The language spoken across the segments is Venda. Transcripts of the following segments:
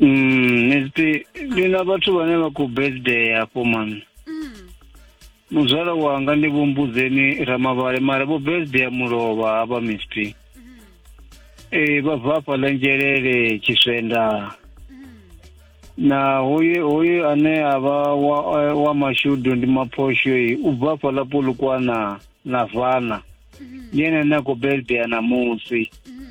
Mm, Miss ndi na vhathu vhane vha khou birthday afho mami. Mm. Muzwala wanga ndi vhumbudzeni Ramavhale mara vho birthday ya mulovha hafha Miss P. Mm. Eh vha bva afha ḽa Nzhelele Tshiswenda. Mm. Na hoye hoye ane avha wa eh, wa mashudu ndi maphosho eh, u bva afha ḽa Polokwana na Vana. Mm. Ndi ene ane a khou birthday namusi. Mm.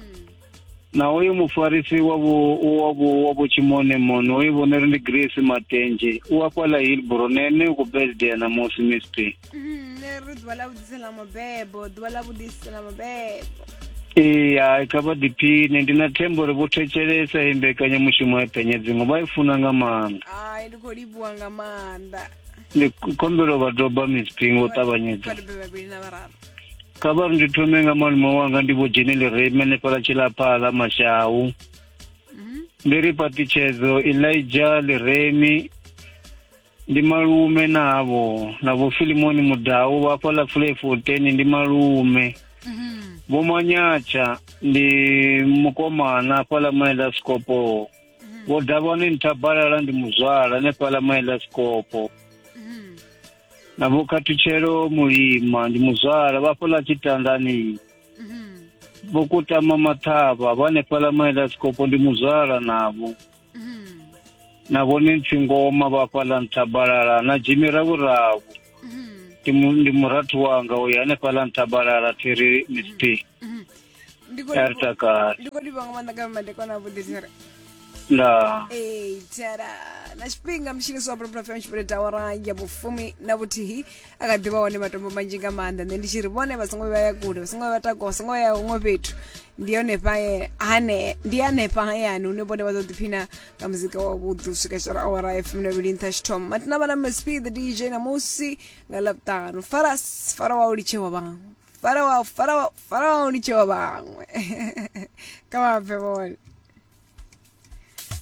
na uyu mufarisi wa vhu- wa vhu- wa vhutshimoni moni uyu vhone ri ndi grace matenje u a fhala hilbro na ene u khou birthday na musi miss p Mm, nṋe ri ḓuvha ḽa vhuḓisi ḽa mabebo ḓuvha ḽa vhuḓisi ḽa mabebo ee hai kha vha ḓiphine ndi na thembo uri vho thetshelesa i mbekanyamushumo ya penya dziṅwe vha i funa nga maanḓa ai ndi khou livhuwa nga maanḓa ndi khombelo vha doba miss p ngo u ṱavhanyedza vhadebe vhavhili na vhararu kha vha ri ndi thome nga malume wanga ndi vho dzhenele reme hanefhala tshilaphala mashau mhm. ndi ri paṱitshedzo elija liremi ndi malume navho na vho filimoni mudau vha fhaḽa fule fourteen ndi malume mhm. vho manyatsha ndi mukomana fhaḽa maela sikopo mhm. vho davhani nthabalala ndi muzwala hanefhaḽa maela sikopo na vho khathutshelo mulima ndi muzwala vha fhaḽa tshitandani vho kutama maṱhavha vha hanefhaḽa maela sikopo ndi muzwala navho na vhone ntsingoma vha fhaḽa nthabalala na jimi ravhuravhu ndi mu- ndi murathu wanga uyo hanefhaḽa nthabalala thiri mistake ndi khou livha- Ertakar. ndi khou livha nga maanḓa nga madekwana avhuḓi thera Nda. Ee, thera na tshifhinga mutshiniso wa bulapula fm tshipele tawara ya vhufumi na vhuthihi a kha ḓivha hone matombo manzhi nga maanḓa nṋe ndi tshi ri vhone vha songo vhuya vha ya kule vha songo vhuya vha takuwa vha songo vhuya ya huṅwe fhethu ndi honefha ye- hane ndi hanefha hayani hune vhone vha ḓo ḓiphina nga muzika wa vhuḓi u swika shara awara ya fumi na vhili nṱha tshithoma matina vha na msp the dj na musi nga ḽavhuṱanu faras fara wa u litshewa vhaṅwe farawa farawa farawa ni tshewa vhaṅwe ka vha bve vhone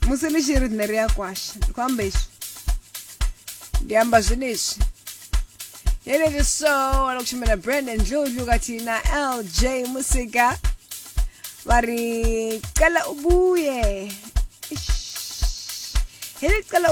musi ni tshi ri nṋe ri a kwasha ndi khou amba izwi ndi amba zwenezwi yenezwi so wana kushumela brandon dludlu kati na lj musika va ri cela ubuye Eish. hi ri cela